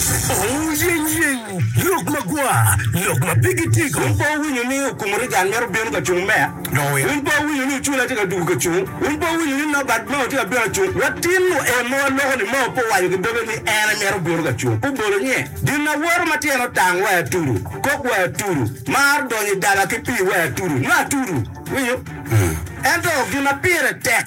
Wuyenyeny! Lok magwar, lok ma pigi tic. Wun pe wuwinyo ni okumuri gang mito bino ka cung meya? Wun pe wuwinyo ni ocula tye ka dugo ka cung? Wun pe wuwinyo ni Nogat mao tye ka bino ka cung? Watino en ma waloko-ni mao pe owaco ki doge ni en emito bino ka cung. Obolo nye, Gin awoto ma tyene otang wa atudu, kok wa atudu, mar donyo i daba ki pii wa atudu, nyo atudu. Iwinyo? Ento gin ma pire tek.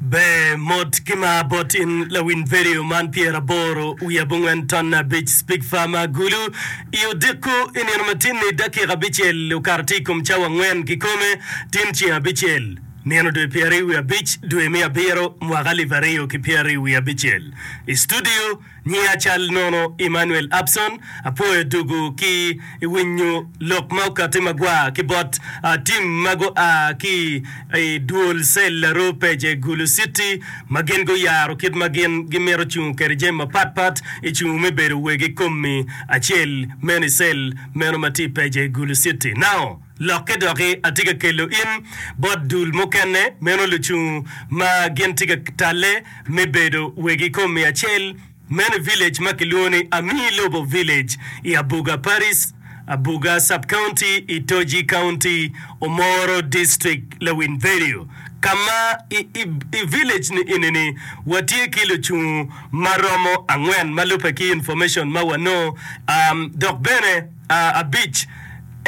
Ber mot ki mar bot in lawiny vedio man pyera aboro wiye abongwen ton abic Speak Farmer Gulu i odiko i nino matinni dakika abicel okato tye i kom cawa angwen kikome tin ceng abicel nino dwe pyera i wiye abic dwe me abiro mwaka alip aryo ki pyera i wiye abicel i studio Nia cal nono Emmanuel Abson, apwoyo dugu ki i winyo lok ma okati magwar ki bot team ma gua ki i duol cell aroo page Gulu city ma gin guyaro kit ma gin gimito cungo kede jami mapat pat i cungo me bedo wegi komi acel meno i cell meno ma tye i page Gulu city now. Lokke doki, atye ka kelo in bot dul mukene, meno lucung ma gin tye ka talle me bedo weg i kom miya acel meno i village ma kilwongo ni Amii Lobo Village i Abuga Paris, Abuga Sub-County i Toji County, Omoro District, Lawiny Vedio. Ka ma i, i, i village ni eni-ni watye ki lucung ma romo angwen ma lubbe ki information ma wanongo, um, dok bene. abic,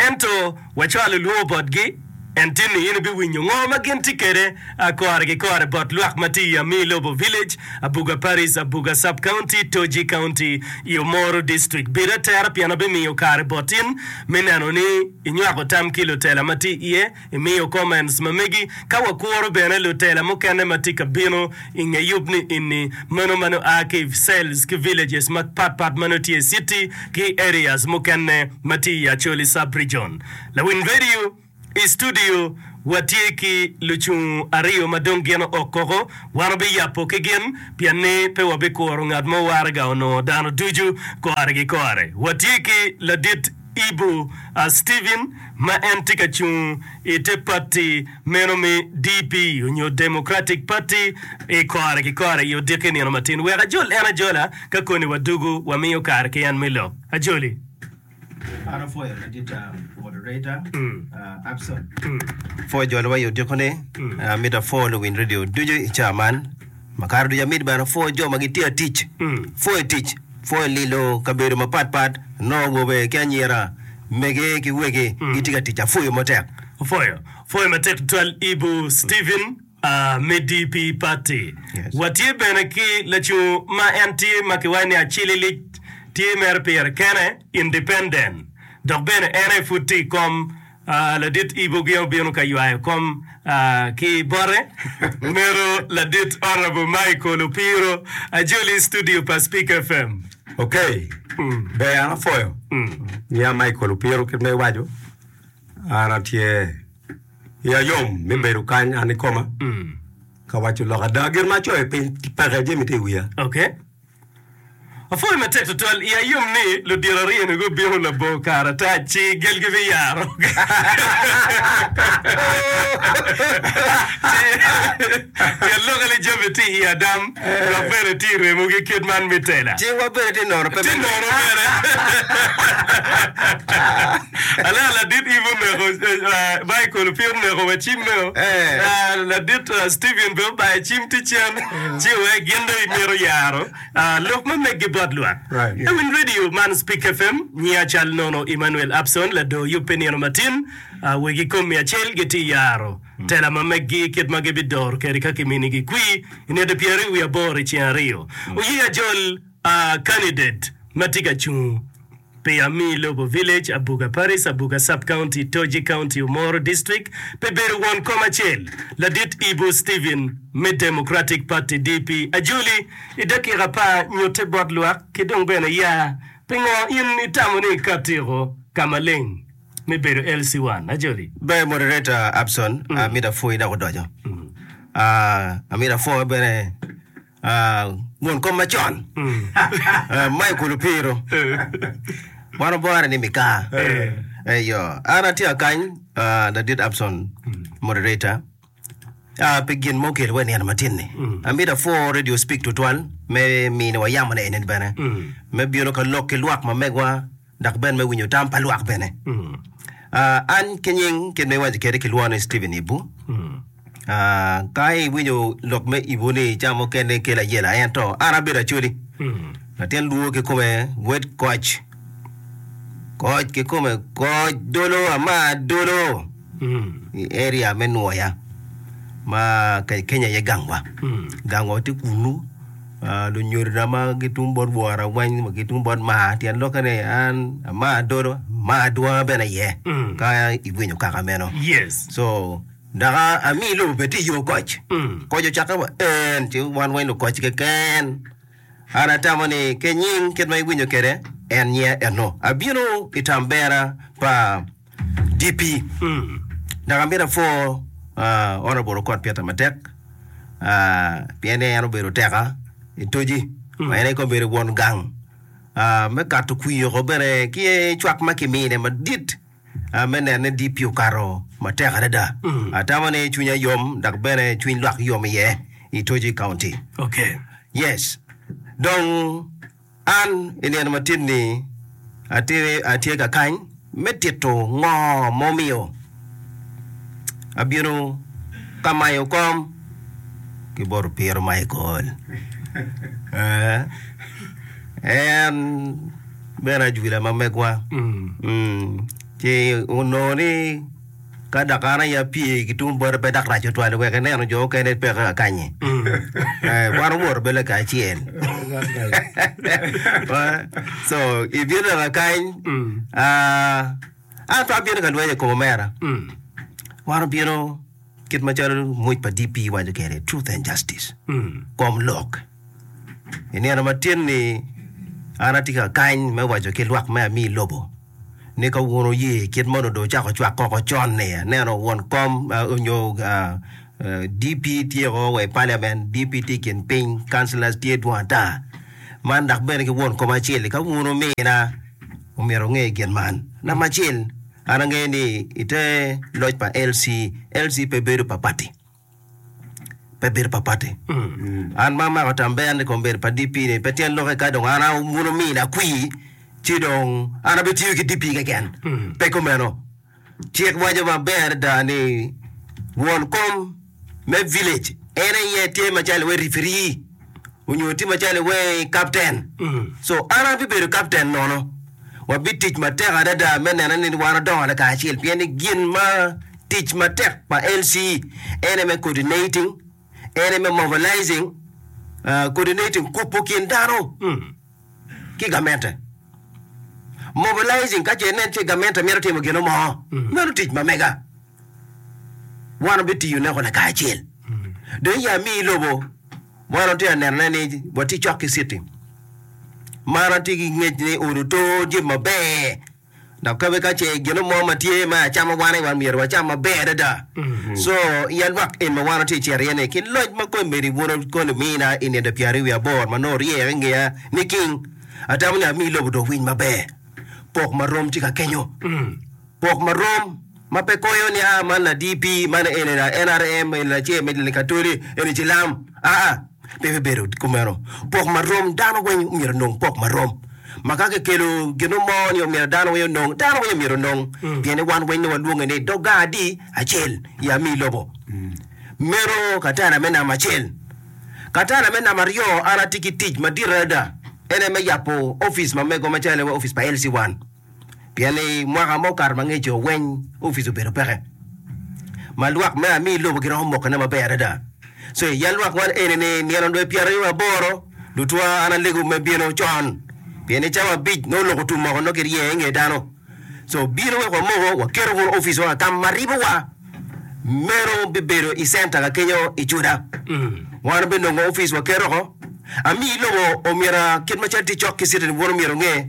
ento wacwalo lwongo botgi, en tye ni in ibiwinyo ngo ma gin tye kwede kore ki kore bot lwak ma tye i Amii Lobo Village, Abuga Parish, Abuga Sub County, Toji County, iyo Moro District. Bed atera pien abimiyo kare bot in me neno ni inywako tam ki lutela ma tye iye. Imiyo comments ma megi ka wakuro bene lutela mukene ma tye ka bino i nge yub ni eni, meno ma nongo aa ki i cells ki villages ma pat pat ma nongo tye i city ki areas mukene ma tye i Acholi sub region. Lawiny radio, I studio wa tye ki lucung ariyo ma dong gin ook koko, wan wabi yabo ki gin pien ni pe wabi kuro ngat mo waraga onongo dano ducu kore ki kore. Wa tye ki ladit. Ibu Stephen ma en tye ka cung i te pati meno me DP onyo Democratic Party i kore ki kore i odiki nino matin. Wek ajol en ajola ka koni wa dugu wa miyo kare ki en me lok. Ajoli. An apwoyo madit moderator Abson. Pwoyo joliwa i odiko ni. Amito apwo luwiny radio ducu i caa man. Makato ducu amiti bene apwoyo jo ma gitye atic, apwoyo i tic, apwoyo i lilo kabedo mapat pat, anongo awobe ki anyira, mege ki wegi gitye ka tic, apwoyo matek. Apwoyo, apwoyo matek tutwal Ibu Stephen Amedi pi patti. Yes. Watye bene ki lacungo ma en tye ma kiwaco ni Acililic, tye mere pire kene, independent, dok bene en aye pud tye i kom Ladit Ibogia obino ka ywayo kom ki bote. Omego ladit Honourable Michael Opiro ajoli studio pa Speak FM. Ok, ber an apwoyo. Nyinga Michael Opiro kit ma iwaco, an atye iya yom me bedo kany an ikoma ka waco lok ada. Gin ma acoyo piny peke jami tye i wiya. Ok. Apwoyo matek tutwal iya yom ni ludito aryo-ni gubino labongo kare ata ci gelgi biyaro. Nget lokke ni jami tye i adam dok bene tye i remogi kit man me tela. Ci wa bene tye nono pe Tye me nono bene. Alea ladit Ivo oneko eh, Michael pe oneko wa cim meno. Eh. Ah, Ladit ah, Steven pe obayo cim ticen. ci wee gin dong imito yaro lok ma meggi bot lwak. Ewiny radio man Speak FM, nyi acal nono Emmanuel Upson ladoo yubbe nino matin, wegi kom mia acel gitye i yaro tela ma meggi kit ma gibidoro kede ka kiminigi kwi inete pyeri wi aboro iceng ariyo. Oye ajol. A Candidate ma tye ka cung pi Amii Lobo Village, Abuga Parish, Abuga Sub-County, Toji County, Omoro District, pi bedo won kom acel, Ladit Ibu Stephen me Democratic Party, DP, ajoli i dakika apar nyutte bot lwak ki dong bene ya pingo in itamo ni ika tiko ka maleng me bedo LC-1. Ajoli. Ber Moderator Abson, amito apwoyi dok odoco. Amito apwo bene. Ah, mon kom macon. Ah, Michael Opiro. Wan obore ni Mikaa. Eyo, an atye akany ah, ladit Abson moderator. Ah, pi gin ma okelo wa i nino matin-ni. Amito apwor Radio Speak tutwal me miniwa yamone eni bene. Me bino ka lok ki lwak mamegwa dok bene me winyo tam pa lwak bene. Uh, an ki nying kit ma iwaco kede ki lwoni Stephen Ibu. Uh, ka iwinyo lok me Ibu ni ca mukene kelo ayela ento an abedo acoli. Latin luo ki kome wed koc. Koc ki kome koc dolo ama dolo. i area me Nwoya ma Kenya aye gangwa. Gangwa tye kunu. Ah, lunyodona ma gitum bot wora weng, ma gitum bot maa, tyen lokke ni an amaa dodo, amaa adwonga bene iye. Ka iwinyo kaka meno. Yes. So, dok a- ami lobo bene tye i yo koc. Koc ocakke wa en, ci wan weng lukoc keken. An atamo ni kenying kit ma iwinyo kede en nyia eno. Abino i tambera pa DP, Dok amito apwor Honourable Okot Peter matek pien ni en obedo teka i toji ma en aye kong bedo won gang me kato kwir oko bene ki cwak ma kimine madit me neno ni DP okato matek adada. Atamo ni cwinya yom dok bene cwiny lwak yom iye i toji kaunti. Okay. Yes. Dong An, i nino matit-ni, atye ka kany me tito ngo ma omiyo abino ka mayo kom ki boto piro Michael. En bene ajwila ma megwa, ci onongo ni. Ka dok an aye apye ki tung bote pe dok rac otwal wek ineno jo okene peke akanyi. Eh, Wan owoto bele ka acel. so ibino nena kany ah, an pe abino ka lweny i kom omera. Wan obino kit macalo muc pa DP waco kede truth and justice. Kom lok. I nino matin ni an atye ka kany me waco ki lwak me ami lobo. ni ka wun wuye kit moni dong wucako cwak koko con ni aneno won kom onyo DP tye o wa i parliament, DP tye i kin piny, councillors tye dwong ata. Man dok bene ki won kom acel-li ka wun wumina omyero wunge gin man. Namba acel an angeyo ni ite loc pa LC, LC pe bedo pa party. pe bedo pa pati. An ma amako tambeya ni kong bedo pa DP ni pe tyen loke ka dong an a wuno mini akwi ci dong an abitiyo ki DP keken. Pe kumeno. Cik waco maber adada ni won kom me village en aye tye macalo iwe referee. onyo tye macalo i wee captain so an abibedo captain nono wabitic matek adada me neno ni wan odongo lakacel pien ni gin ma tic matek pa LC en aye me coordinating en aye me mobilizing ah, coordinating kubo kin dano ki gamente mobilizing ka ce inen ce gamente mito timo gino mo meno tic ma mega Wan wabitiyoneko lakacel. Dong i Yami i lobo, wan watye ka nenone ni watye cok ki citi man. Atye ki ngec ni ot oto tye maber, dok kabe ka ce gino mo ma tye ma acama wane, wan myero wacam maber adada. Co i alwak en ma wan watye ka cito iye-ni, ki loc ma kony medo ibwuna koni omina i nino pyeraryo wiye aboro ma nongo oryere i ngeya ni king, atamo ni ami lobo dong owiny maber. Pok ma rom tye ka kenyo, pok ma rom. ma pe koyo ni aa man la DP, man eni la NRM, eni la ce, eni Likatoli, eni Cilam, aa, pe bibedo kumeno. Pok marom, dano weng omyero onong pok marom. Ma ka kikelo gino mo ni omyero dano weng onong, dano weng omyero onong, pien ni wan weng ni walwonge ni dog gang adi acel i ami lobo. Meno katanda me namba acel. Katanda me namba aryo, an atye ki tic madit adada, en aye me yabo opic ma mego macalo wa opic pa LC1. pien i mwaka ma okato ma ngeco weny opic obedo peke ma lwak me ami lobo giromo mokone maber adada so i yal lwak man eni ni nino dwe pyeraryo aboro lutwa an alego me bino con pien i cawa abic nongo lok otum moko nongo kirye inge dano so bino wek wamoko waketo kunu opic wa kama ma ribo wa meno bibedo i center ka kenyo i cuda wan obinongo opic waketo oko ami lobo omyero kit macalo tye cok ki citizen bun omyero onge.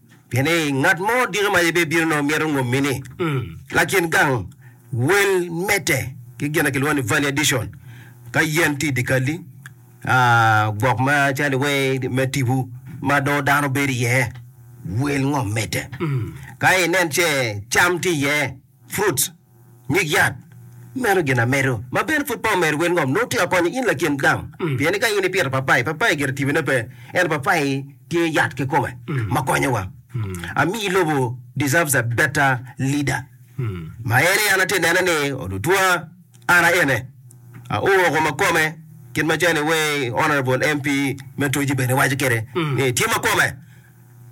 Pien ni ngat mo odiko ma yibbe bino nongo mito ngommi ni lakin gang wel medde ki gin ma kilwongo ni value addition ka yen tye i dye kalli gwok ma calo iwee me tipo ma dong dano bedo iye wel ngom medde ka inen ce cam tye iye fruits Nyig yat meno gin amedo ma bene pud pe omedo wel ngom nongo tika konyo in lakin dam pien ni ka in ipito papai papai gire tibine pe ento papai tye yat kikome ma konyowa amii lobo deserves a better leader ma en aye an atye nene ni olutwa an aye ne aoro koma ikome kit macalo ni way honourable MP me Toji bene waco kede ni tye makome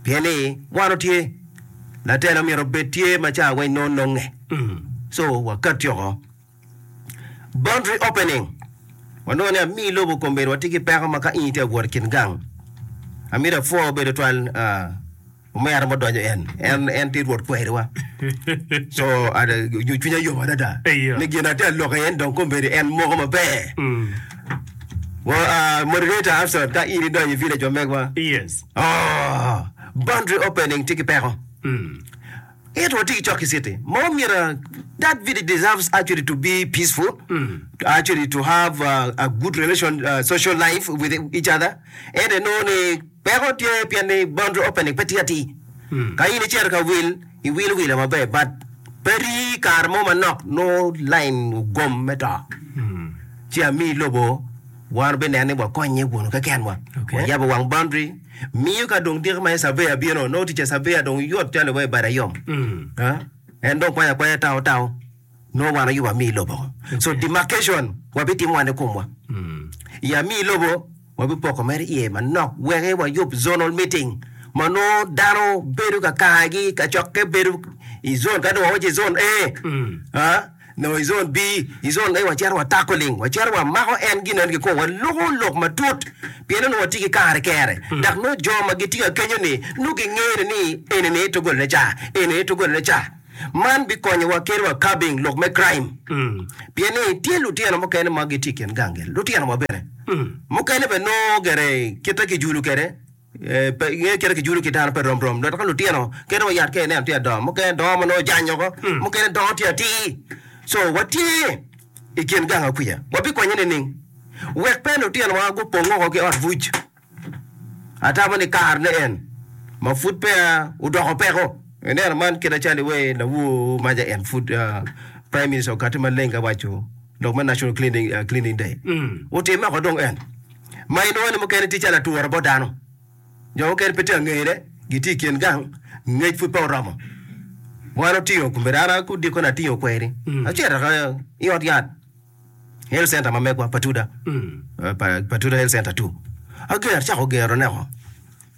Pien ni wan otye. Latela omyero obed tye ma ca weng nongo nonge. So wakat yoko. Boundary opening. Wanongo ni ami lobo kombedo watye ki peko ma ka in itye awot i kin gang. Amito apwo obedo twal ah, omera mo donyo en. En en tye rwot kweriwa. So ada yo cwinya yom adada. Eyo. Ni gin atye aloke en dong kombedo en moko maber. Wa ah, moderator Absalom ka in idonyo i village wa megwa. Yes. Oh, boundary opening tye ki peko. Ento watye ki cok ki city ma omyero that village deserves actually to be peaceful, to actually to have uh, a good relation, uh, social life with each other. Ento inongo ni peko tye pien ni boundary opening pe tye atir. Ka in icito ka wil, iwilo wila maber but pe ri kare mo manok nongo line ogom me to. Ci ami lobo Wan wubineno ni wakonye wunu kekenwa. Wayabo wang boundary, miyo ka dong diki ma surveyor bino, nongo tic pa surveyor dong yot calo iwaci bade yom. En dong kwanyo akwanya tao tao, nongo wan aye wamiyi lobo. So demarcation wabitimo wan ikomwa. I amiyi lobo, wabipoko mere iye manok wek wayub zonal meeting ma nongo dano bedo ka kargi, kacokke bedo i zone, ka dong wawaco i zone A, Nongo i zon B, i zon A wacito watako ling, wacito wamako en gin eno kikwo, waluko lok matut pien onongo watye ki kare kere. Dok nongo jo ma gitye ka kenyo-ni nongo gingeyone ni eni ni dogolone ca, eni ni dogolone ca. Man bikonyowa kit wa curbing lok me crime pien ni tye lutino mukene ma gitye i kin gang gel, lutino wa bene mukene bene nongo gere kite kijulu kwede. Ngeyo kite kijulu ki dano pe rom rom dok ka lutino kene wa yat ka ineno tye adongo mukene dongo ma nongo ojany oko mukene dongo tye atir so watye i kin ganga kwica wabikonye nining wek pe lutinowa gupong woko ki ot buc atamo ni kare ne en ma pud peya odoko peko ineno man kit acalo iwer lawor maja en pud prime minister okati maleng ka waco lok me national cleaning day otimme oko dong en ma inongo ni mukene tye calo ature bot dano. Jo mukene pe tye ka ngeyone, gitye i kin gang, ngec pud pe oromo. Wan otingo, kombedo an aye odiko ni atingo kweri, acito ka i ot yat, health center ma megwa, Patuda, eh, Pa- Patuda Health Center two. Ager, acako gero neko.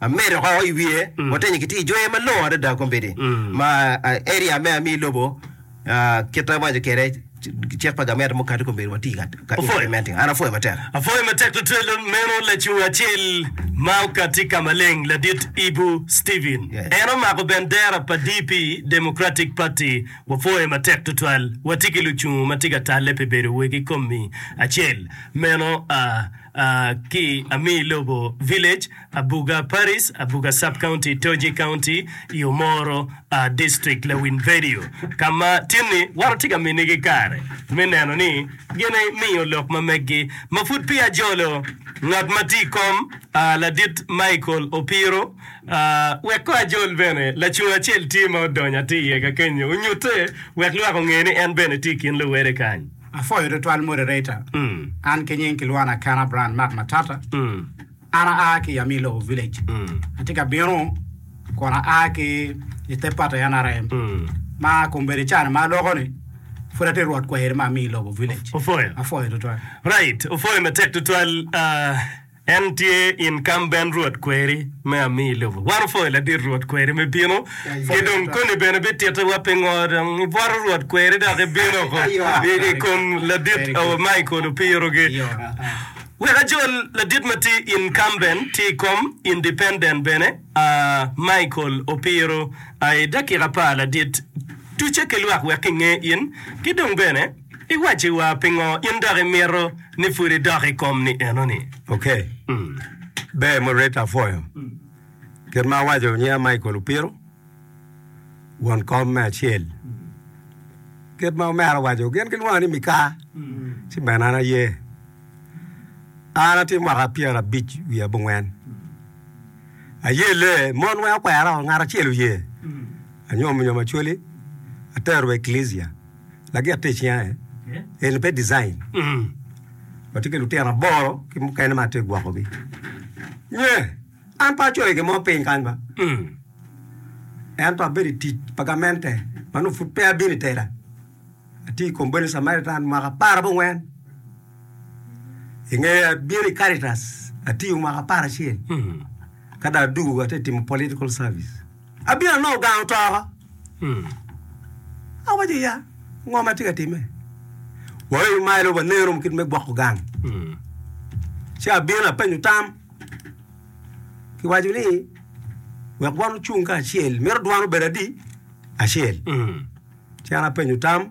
Amedo ko i wiye, watenyo ki tiyo jwer malongo adada kombeddi ma area me ami lobo kit ma waco kwede cik pa gamente mukati kombeddi watye ka implementing. An apwoyo matek. Apwoyo matek tutwal meno lacung acel ma okati ka maleng ladit Ibu Steven. En omako bendera pa DP, Democratic Party. Wapwoyo matek tutwal. Watye ki lucungu ma tye ka talle pi bedo wegi komi acel meno. ki Amii Lobo Village, Abuga Paris, Abuga Sub-County, Toji County, i Omoro District, Lawin Vedio, ka ma tinni wan watye ka minigi kare me neno ni gimiyo lok ma meggi. Ma pud peya jolo, ngat ma tye i kom, Ladit Michael Opiro, wek kong ajol bene, lacung acel tye ma odonyo atir iye ka kenyo, onyutte wek lwak onge ni en bene tye i kin luwede kany. Apwoyo tutwal moderator an ki nying kilwona Kana Brand Mark Matata an aa ki Yamir Lobo Village atye ka bino kun aa ki i te party nrm ma kombeddi cani ma aloko ni pud atye rwot kweri ma Amir Lobo Village Opwoyo. apwoyo tutwal. Right, opwoyo matek tutwal. ah, En tye incumbent Rwot kweri me ami i lobo. Wan opwoyo ladit Rwot kweri me bino, ki dong koni bene bitittiwa pingo dong ibwoto Rwot kweri dok ibino oko i kom ladit awa Michael Opirogi. Wek ajol, ladit ma tye incumbent tye i kom, independent bene a Michael Opiro a i dakika apar ladit. Tucce ki lwak wek kinge in, ki dong bene. Iwacci wa pingo in dok imito ni pud idok i kom ni eno ni. Ok. Ber Moderator apwoyo. Kit ma awaco nyinga Michael Opiro, won kom me acel. Kit ma omera owaco gin gilwonga ni Mikah ci bene an aye. An atye mwaka pyera abic wiye abongwen. Aye lee mon weng okwera o ngat acel oye. Anyom nyom Acholi atero wa i Eklezia. Lagit tic nya en eni pe design. Watye ki lutino aboro ki mukene ma atye gwokogi. Nye, an pe acoyo gimo piny kany ba. Ento abedo i tic pa gamente ma nongo pud pe abino i tela. Atye i komboni Samaritan mwaka apar abongwen. I ngeye abino i Caritas, atiyo mwaka apar acel. Ka dong adugo atye timo political service. Abino anongo gang otoko. Awaco ni, 'Ya, ngo ma atye ka timme? Waoyo malo wanen romo kit me gwoko gang. Ci abino apenyo tam. Kiwaco ni, 'Wek wan ocung kacel, mito dwan obed adi? Acel. Ci an apenyo tam.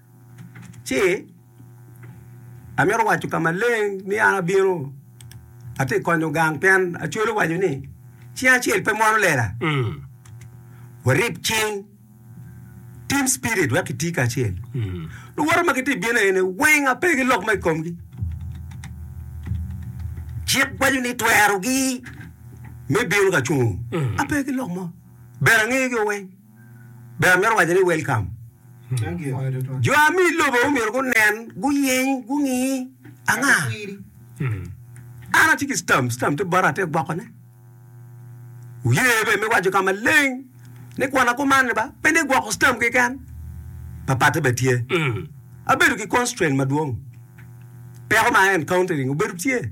ci amito waco ka maleng ni an abino atye ka konyo gang pien Acwele owaco ni cing acel pe mwono lela. Warib cing, team spirit, wek kiti kacel. Luwote ma gitye ka bino eni weng ape ki lok mo i komgi. Cik waco ni twerogi me bino ka cungo ape ki lok mo. Bedo angegi weng. Be amito waco ni welcome? Jo a mi lobo omyero gunen, guyeny, gungi anga? An atye ki stamp, stamp tye bota atye gwoko ne. Wuye be me waco ka maleng ni kwena kuman ni ba pe ni gwoko stamp keken. Papatte be tye. Abedo ki constraint madwong. Peko ma encountering obedo tye.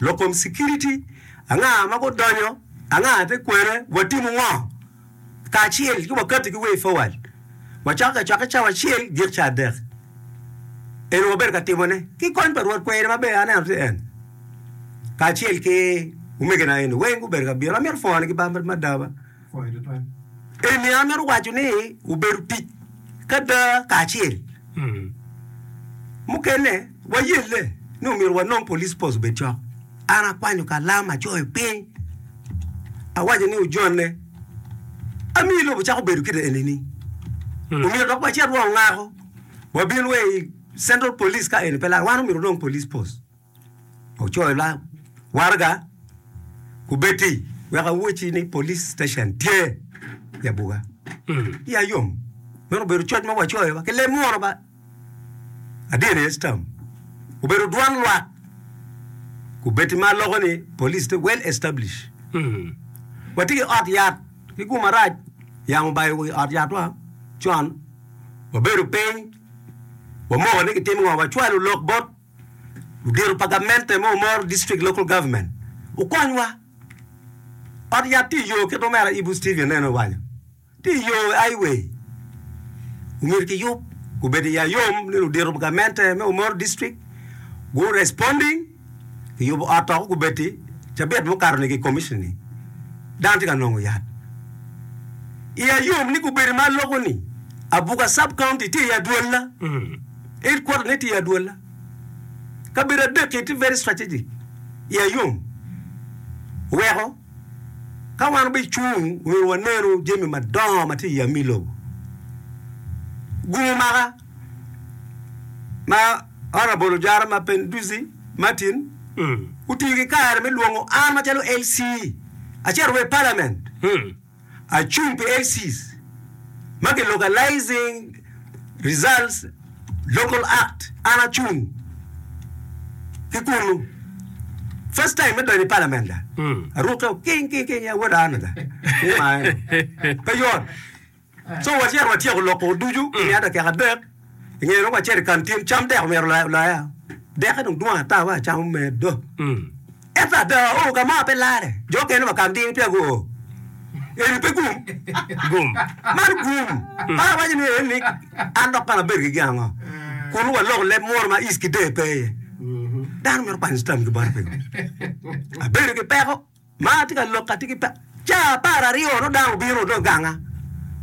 Lok kom Sikiriti, Anga ma gudonyo? Anga te kwene? Watimo ngo kacel ki wakatti ki way forward? Wacako ki acwaka cawa acel gik ca adek. Eno wabedo ka timone ki kony pa Rwot kwene ma ber aneno tye en kacel ki omegina eno weng gubedo ka bino. Amito pwonigi bambat me adaba. Eni an mito waco ni obedo tic ki ada kacel. Mukene wayelle ni omyero wanong police post obed cok. An akwanyo kalam acoyo piny awaco ni ojonne amiyo lobo cako bedo kit eni ni omyero dok wacit wa ongako wabin wa i central police ka eni pe lar wan omyero wanong police post. Ocoyo lam waraga kubeddi wek awacci ni police station tye i abuga. Iya yom. Meno obedo coc ma wacoyo ba ki leb munu ba. Adyeni Estam obedo dwan lwak kubeddi ma loko ni police tye well established. Watye ki ot yat ki gumarac yamo obayo wi ot yatwa con wabedo piny wamoko ni kitimo ngo wacwalo lok bot Odiro pa gamente me Omoro District Local Government okonywa. Ot yat tye i yo kit ma omera Ibu Steven nene owaco. Tye i yo High Way. Omyero kiyub. Obedo i ayom ni ludiro pa gamente me Omoro District gu responding kiyubo ot to gubedo-ti cabit mukato ni ki commission ni dano tye ka nongo yat. I ayom ni gubedo ma loko ni Abuga Sub County tye i adwolla. It kwok ni tye adwola. Kabedo adek-ki tye very strategic i ayom weko ka wan obicung nyo wanenu jami madongo ma tye i yam-mi lobo. Gumo maka ma Honourable Ojara Mapenduzi Martin otiyo ki kare me lwongo an macalo LC acito wa i Parliament. Acung pi ACs ma ki localizing results local act an acung ki kunu first time me donyo i parliament da aruke king king king ya wada ana da ni ma eno pe yot so wacito watyeko loko ducu miya dakika adek I nge lok acel i kan tyen cam dek omyero olaya. Dekke dong dwong ata wa cam omeddo. Ento ada oo ka maa pe lare. Jo okene wa kan ding peya guoo. Eni pe gum. Gum. Man gum. Para waco ni en ni an dok kong abed gigi ango? Kunu wa lok leb muru ma is ki dee pe iye. Dano mito kwanyo cam ki bot piny. Abedo ki peko. Ma atye ka lok atye ki par. Ca apar aryo dong dano obino dong oganga,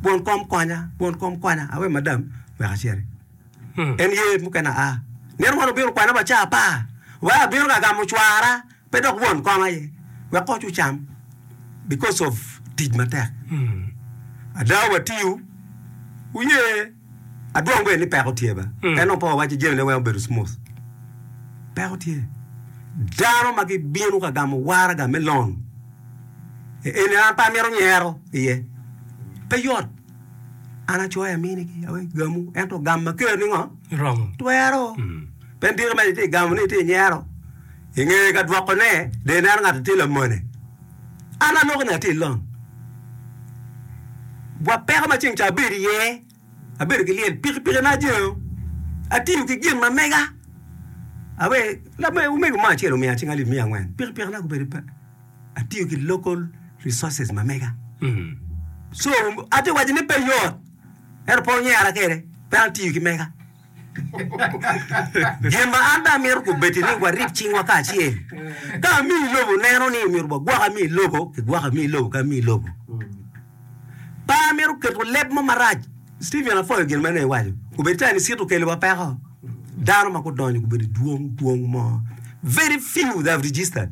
Won kom konya, won kom konya. Awe madam wek aciti. En ye mukene aa. Nino moni obino okwana wa ca apar. Wa abino ka gamo cwara, pe dok won kom aye. Wek koc ocam because of tic matek. Ada watiyo, wuye. Adwong kwede ni peko tye ba. En dong pe wawaco jamine weng obedo smooth. Peko tye. Dano ma gibino ka gamo waraga me loan, e eni an pe amito nyero iye. Pe yot. An acoyo aminigi, awek gamu, ento gam ma keroni ngo? Romo. Twero. Pien tiki ma itye ka gamo ni itye ka nyero, ingeye ka dwokone, dong ineno ngat-ti tye lamone. An aloko ni atye long bwa peko ma ceng ca abedo iye, abedo ki lyel, pikipikina ajengo, atiyo ki gin ma mega. Awe omego mo acel omiya cing alip miya angwen, pikipikina gubedo pe, atiyo ki local resources ma mega. So atye waco ni pe yot, ento pe onyera kede, pe atiyo ki mega. Gin ma an bene amito kobedo ni warib cingwa kacel. Ka ami i lobo neno ni myero wagwok ami i lobo, kigwoko ami i lobo ki ami i lobo. Pe amito keto leb mo marac. Stephen apwoyo gin ma nen iwaco. Obedo calo Liciti okeliwa peko. Dano ma gudonyo gubedo i dwong dwong mo. Very few they have registered.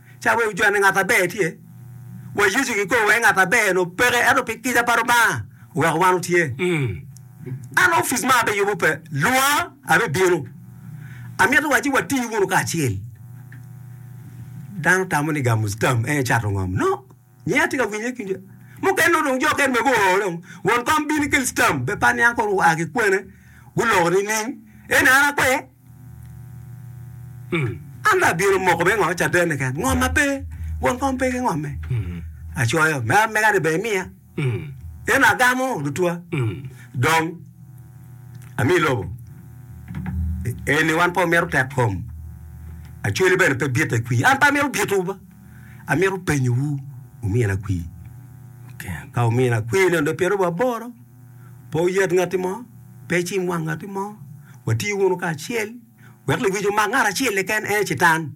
Ca wek wujwanne ngat aber tye, wa Yecu gikobo wai ngat aber-nu peke, ento pi kica pa Lubanga oweko wan wutye. An ofic ma abiyubo pe, lwonga, abibino. Amito waci wati wunu kacel. Dano tamo ni gamo tam en cato ngom? No. Nyi atye ka winye kinde mukene nongo dong jo kene bene guo dong won kom bino ikel stam be pa niang kono gua ki kwene guloko nining eni an akwe an dong abino moko me ngo caden ni kene ngom ma pe won kom pe ki ngome acoyo me amega ni bene imiya eno agamo lutwa dong ami lobo eni wan pe wamito tek kom acwali bene pe bite i kwi an pe amito bito. Amito penyowu, wumina kwir? Ka wumina kwir neno dong pyeraryo wa aboro, pe wuyat ngatti mo, pe icim wang ngatti mo, wati wunu kacel, wek lewic omak ngat acel keken, en aye Catan.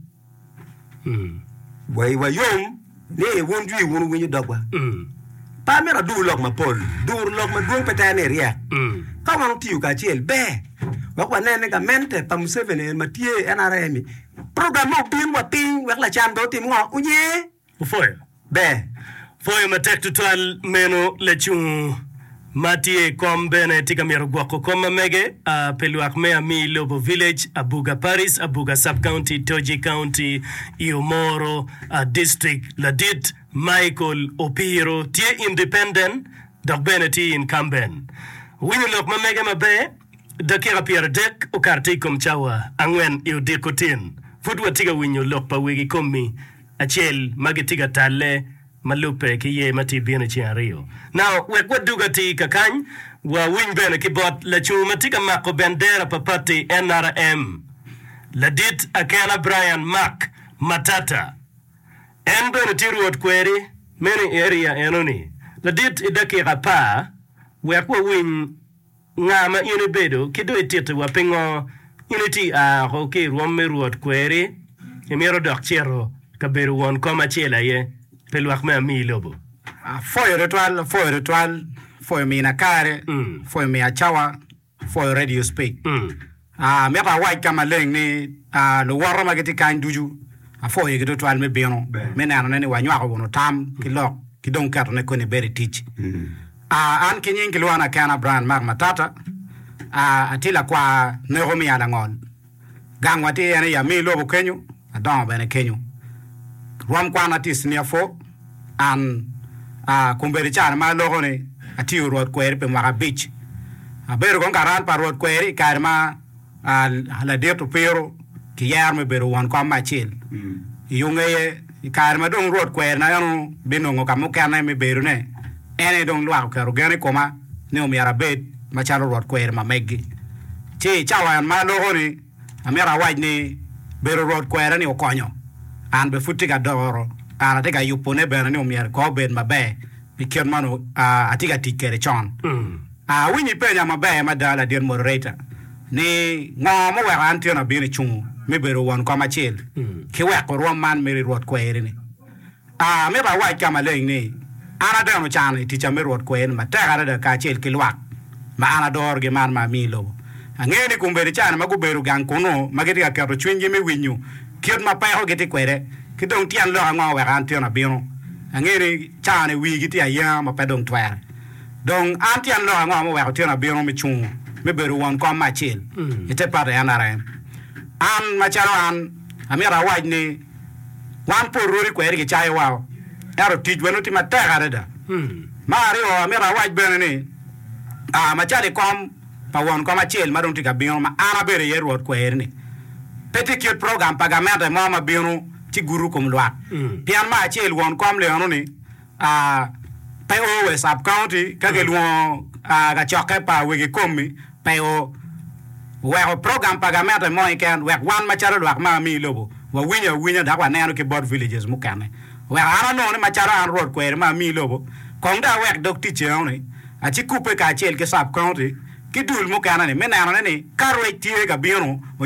Wa iwa yom ni wun jwi wun wuwinyo dogwa. Pe amito adur lok mapol, duro lok madwong pe tere ni iryek. Ka wan wutiyo kacel, ber wek wanen ni gamente pa Museveni eni ma tye, NRM-mi, Program ma obin wa piny wek lacan pe otim ngo? Onye. Opwoyo. Ber. Pwoyo matek tutwal meno lacung ma tye i kom bene tye ka myero gwoko kom ma mege a pi lwak me Amii Lobo Village, Abuga Parish, Abuga Sub County, Toji County, i Omoro a District. Ladit Michael Opiro tye independent dok bene tye incumbent. Owinyo lok ma mege maber. Dakika pyeradek okato i kom cawa angwen i odiko tin, pud watye ka winyo lok pa wegi komi acel ma gitye ka talle ma lubbe ki yer ma tye ka bino i ceng aryo. Now, wek wadug atir kakany, wawiny bene ki bot lacungo ma tye ka mako bendera pa pati nrm, Ladit Akena Brian Mark Matata. En bene tye rwot kweri meno i area eno-ni. Ladit i dakika apar wek wawiny Nga ma in ibedo, ki dong ititi wa pingo? In iti a oko ki i rwom me Rwot kweri, imito dok cito ka bedo won kom acel aye pi lwak me ami i lobo? Apwoyo twatwal, apwoyo twatwal, apwoyo mina kare, apwoyo miya cawa, apwoyo radio speak. Amito awac ka maleng ni, luwota ma gitye kany ducu, apwoyogi tutwal me bino me nenone ni wanywako wunu tam ki lok ki dong ketone koni bed i tic. An ki nying kilwona kena Brian Mark Matata, atye lakwar neko me Alangol. Gangwa tye en i Yamir lobo kenyo, adongo bene kenyo. Rwom kwana tye Senior Four. An, a, kun bene i carre ma aloko ni atiyo rwot kweri pi mwaka abic, abedo kong karal pa rwot kweri i kare ma, a, ladit opiro ki yero me bedo won kom me acel. I yo ngeye, i kare ma dong rwot kweri na eno binongo ka mukene me bedone, en aye dong lwak oketo gen i koma ni omyero abed macalo rwot kweri ma meggi. Ci i cawa en ma aloko ni, Amito awac ni bedo Rwot kwerani okonyo an bene pud tye ka doro kare atye ka yubone bene ni omyero kor obed maber pi kit ma onongo atye ka tic kwede con. Awinyo ipenya maber mada ladit moderator ni ngo ma oweko an tyena bino icungo me bedo won kom acel ki weko rwom man mere Rwot kwerini. A Amito awac ka maleng ni, an abene ocano i ticca me Rwot kwer-ni matek adada kacel ki lwak ma an adorogi man ma ami i lobo. Angeyo ni kombeddi caa-ni ma gubedo gang kunnu ma gitye ka keto cwinygi me winyo kit ma peko gitye kwede, ki dong tyen lok ango wek an tyena bino. Angeyo ni caa-ni wigi tye ayenga ma pe dong twere. Dong an tyen lok ango ma oweko tyena bino me cungo me bedo won kom me acel i te Pate NRM? An, macalo an. Amito awac ni, wan pol rwodi kweri gicayo wa, ento tic wa nongo tye matek adada. Ma aryo, amito awac bene ni, aa macalo i kom pa won kom acel ma dong tye ka bino ma an abedo iye rwod kweri-ni, pe tye kit program pa gamente mo ma bino ci guto kom lwak, pien me acel won kom lyono ni, Pe o we sub county ka gilwongo kacokke pa wegi komi pe o. Weko program pa gamente mo keken wek wan macalo lwak ma ami ilobo wawinyo awinya dok waneno ki bot villages mukene. Weko an anongo ni macalo an rwod kweri ma ami ilobo kong dong awek dog ticce enoni aci kubbe kacel ki sub county ki dul mukene ni me nenone ni ka rwec tye ka bino onyo